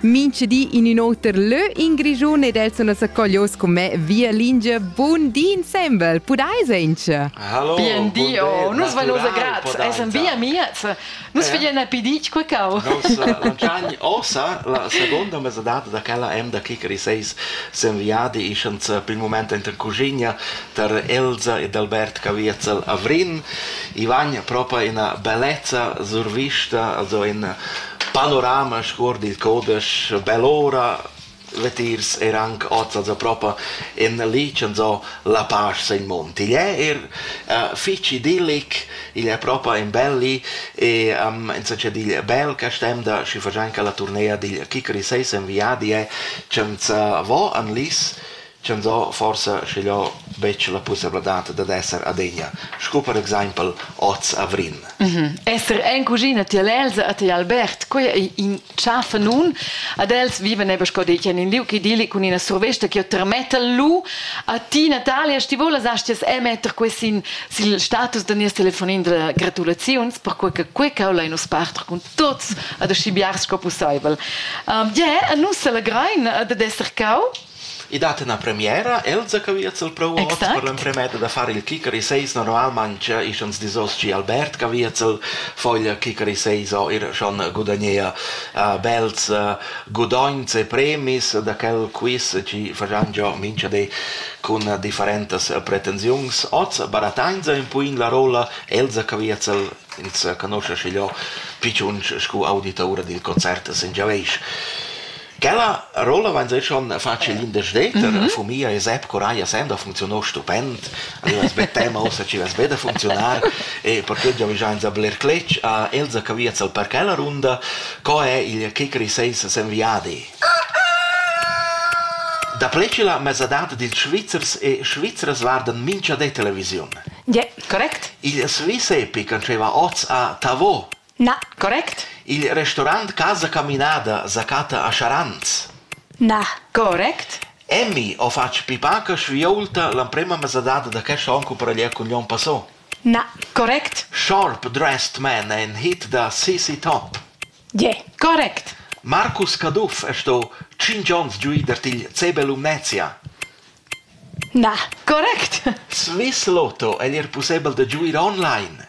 Minch di in ün oter lö in Grischun ed els sun accoglios con me via lingia Bun di insembel, pudais auncha? Hallo, Bien di, oh, nus vai nosa graz, essan via miez, nus veglian a pidic quacau. Nos Lanciani osa la seconda mesadad da quella em da Kikari 6 sen viadi ischans pil moment enten cuginia tar Elsa ed Albert Caviezzel a Vrin. Ivan propa ina bellezza survista, also in panorama scuord il codesch bel ora vetirs er anche oz also propa in licen so la pasch sein mond igl è er uh, fitch idillic igl è propa in belli e um, in succe digl bel che stem da schi fagianca la turnea digl Kikri 6 in viadi è cem vo an lis Tschantsà forsa schiglio betg la pussabladad dad esser adegna, sco per exaimpel oz a Vrin. Esser en cuschina tier l'Elsa e tier Albert, quei ei in tschafa nun. Ad els vivan eba sco detg en in liug idilli cun ina survesta che termetta lu a ti Natalia, ti volas astias emetter quei sin sil status da nies telefonin da gratulaziuns, perquei che quei cau lein nus parter cun tots ad aschi biars sco pusseivel. Um, yeah, e nus selegrein eh, dad esser cau. I dat üna premiera, Elsa Caviezel prou ot Exact. per l'emprema etta da far il Kicker i seis normalmaing ischans disos chi Albert Caviezel foglia Kicker i seis o ir schon gudagnea uh, bels uh, gudogns e premis da quel quiz chi fagian giò mincha di cun uh, differentas uh, pretensiuns. Oz barattainsa ün po in la rolla Elsa Caviezel, ins uh, conosce schigliò pichunch scu auditaura dil concert Singiaveish. Quella rolla vain eir schon fatschi l'intersteter. Fo mia es App Coraia Senda funcziuno stupend. Alura es be tema ussa chi vess be da funcziunar. E perque giò vainsa bler cletg a Elsa che via al parc la runda. Co è il Kickery Seis sen viadi? Da pleci la mesadad dils Svizzers e Svizras guardan mincha de televisiun. Ie, correct. Il Sviss Epic antscheva oz a Tavo Na. Correct? Il restaurant Casa Caminada sa chatta a Scharans. Na. Correct? Emmi ho fatg pipaca schviaulta l'emprema mesadad da quest on cumpareglià cun l'on passà. Na. Correct? Sharp Dressed Man è in hit da CC Top. Yeah. Correct! Marcus Caduff è sto tschintg onns giu da til CB Lumnezia. Na. Correct! Swiss Lotto è er pussebel da giuir online.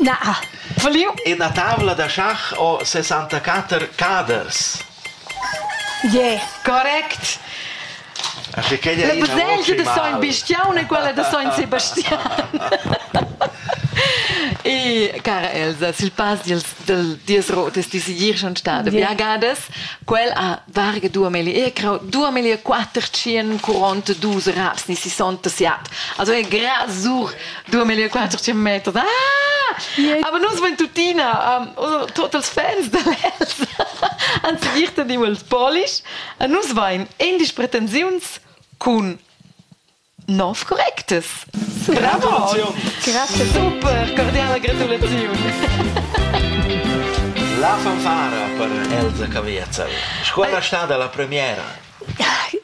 Na. Faliu? Ina tavla da schach o 64 caders? Yeah. Correct. La baselgia da Sogn Bistiaun e quella da Sogn Sebastian. e cara Elsa, sil pass dils dies rotes di sigir schon stada yeah. viagadas, quel ha Varga dua melia, crau dua melia quatter tschien quaranta dus raps ni sessanta siat. Also è grasur dua melia quatter tschien meter. Ah! Aber nus wenn tutina, um, also, totals fans da les, ans virten immer il polish, a nus vain indisch pretensiuns cun Nov correctes. Bravo! Grazie, super, cordiale gratulazioni. La fanfara per Elsa Caviezel. Scuola sta dalla premiera.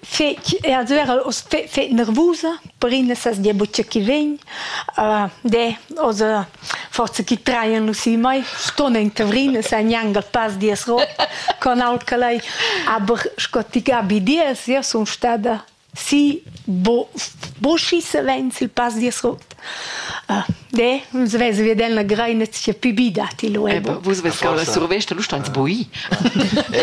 Fec, also era fe, fe nervusa per in sas dia buccia chi vegn. Uh, de, also forza chi traien lu si mai ston in tavrin sa niangal pas dies rot con al calai aber sco ti gabi dies ja sun stada Sì, bo, bo schi savens il pass dil sot. Ah, de, nus vesevi ad el la greina sia pü bi datti lu. Eh, vus vess cau la survesta, lu steins bui.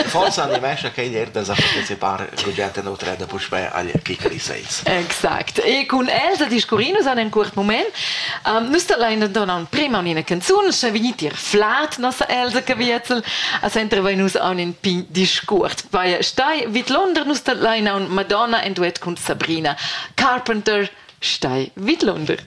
Forsa animescha che ier da sa partecipar Gugent en Utreda puspè agl Kikari Sales. Exact. E cun el da discurrinus an en curt moment, um, nus da lain donan prema unina canzun, sche vignit ir flat na sa elsa che vietzel a sentre vai nus aun in pign discurs vai stai vid Londra nus dat leina un Madonna en duet cun Sabrina Carpenter stai vid Londra